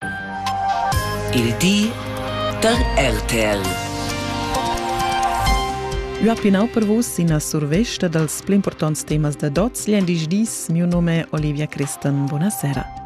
Il di da RTL. Ua pinau per vus ina survesta dals pli importants temas da dots gl'endisch dis. Miu nome è Olivia Christen. Buonasera.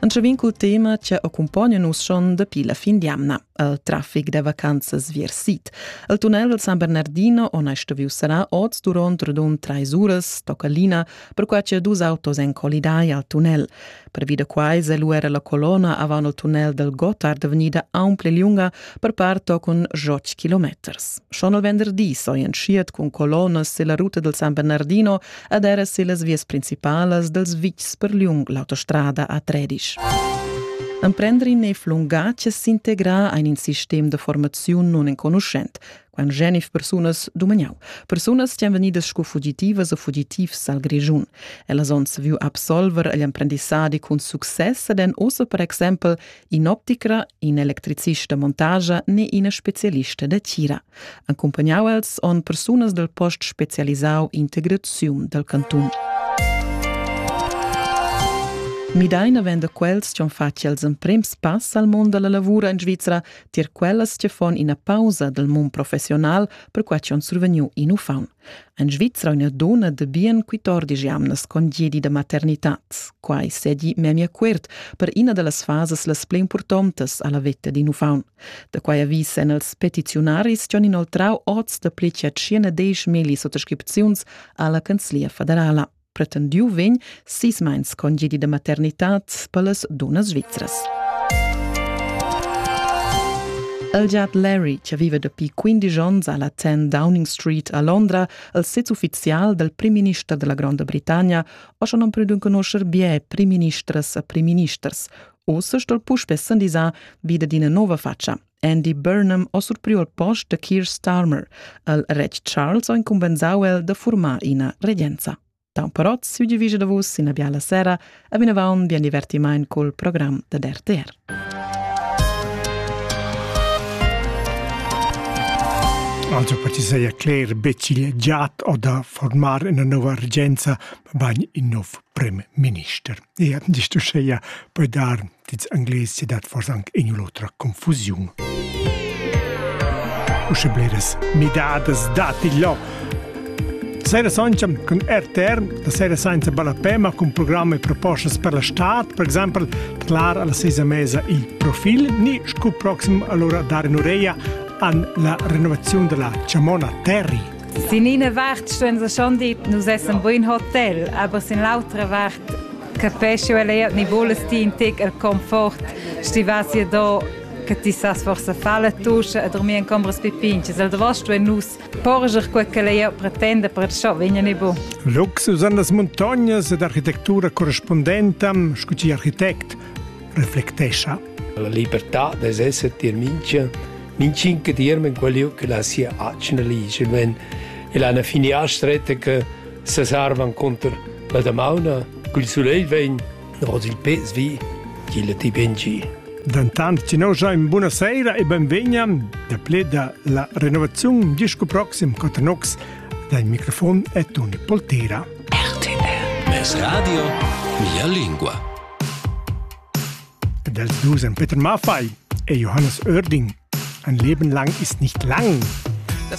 Anche vin cul tema che accompagna nus schon dapi la fin d'jamna al traffic da vacanzas viersit. Al tunnel del San Bernardino, ona stoviu sarà oz durant radun trais uras, tocca lina, per quai che dus autos en colidai al tunnel. Pervi da quai è lu era la colonna avant il tunnel del Gotthard vegnida aunc liunga per part tochen joc kilometers. Schon il venderdi so entschiet cun colonnas silla ruta del San Bernardino ed era sillas vias principalas dels vitgs per liung l'autostrada a Tredisch. Emprendrin ei flungace s'integrar ein in sistem de formaziun non enconuschent. Quant genif persunas dumagnau. Persunas stan vegnidas sco fugitivas e fugitivs al Grischun. Ellas onns viu absolver agl emprendissadi cun success ed en ossa per exempel in opticra, in electricista montagia ne ina specialista da tira. Accompagnau els on persunas del post specialisau integraziun del cantun. Midaina venda quels ci han fatg els emprems pass al mondo della lavura in Svizzera tier quellas che fon ina pausa dal mund professional per quai che on survegniu in ufaun. An Svizra una dona de bien 14 jamnas con diedi de maternitat, quai sedi memia quert per ina de las fases las pli importantes alla vetta din ufaun. De quai avvis en els petiziunaris che on inoltrau oz de pli che 50 melis sottoscripziuns alla Canzlia federala. pretendiu vegn sis meins congedi da maternitad per las dunnas svizras. El giat Larry, che vive dapi 15 onns alla 10 Downing Street a Londra, il sez ufficial del prim-minister della Gronda Britannia, o schon non più d'un conoscer bie prim-ministers e prim-ministers, ossa stol puspé sandisar vide d'ina nova faccia. Andy Burnham ha surpriu al post da Keir Starmer. El retg Charles ha incumbensau el da formar ina regenza. Da un però siu divisa da vus ina biala sera e vinavon bien divertiment col program da RTR. Also per ti sei erklärt, becigl giat o da formar una nova regenza, bain in nov premierminister. Ja, di tu scheia, poi dar Dits Anglais se dat fors anc in l'otra confusiun. Usche bleras midadas dati là. Sera sancam cun RTR, la sera senza ballapema cun programmi e proposte per la stad, per esempio clar alla sesa mesa il profil, ni scu proxim allora dare un'oreja an la renovazione della Ciamona Terry. Sin eine Wart stehen sie schon dort, nous essen buin Hotel, aber sin l'autra Wart Capesci el eir ni vules ti in tec el confort, sti vas ja do che ti sas forse far la tuscia e dormir in combras pipinches. El davosto e nus porger quel che lei pretenda per ciò vegna ne bu. Luxus an las montagnas ed architektura correspondenta, scuti architect, reflectescha. La libertà des esser tier mincha mincinca tierm in quel che la sia acna ligia, wenn e la fini stretta che Sesarvan cunter la damauna cul sulegl vegn nos il pez vi, ch'illa ti ben gi. Dentant ti noscha in buna seira e benvegna da ple da la renovaziun disco proxim Cotanox dal microfon e Toni Poltera. RTL Es Radio, mia lingua. Del Dusen Peter Maffei e Johannes Oerding. Ein Leben lang ist nicht lang. Das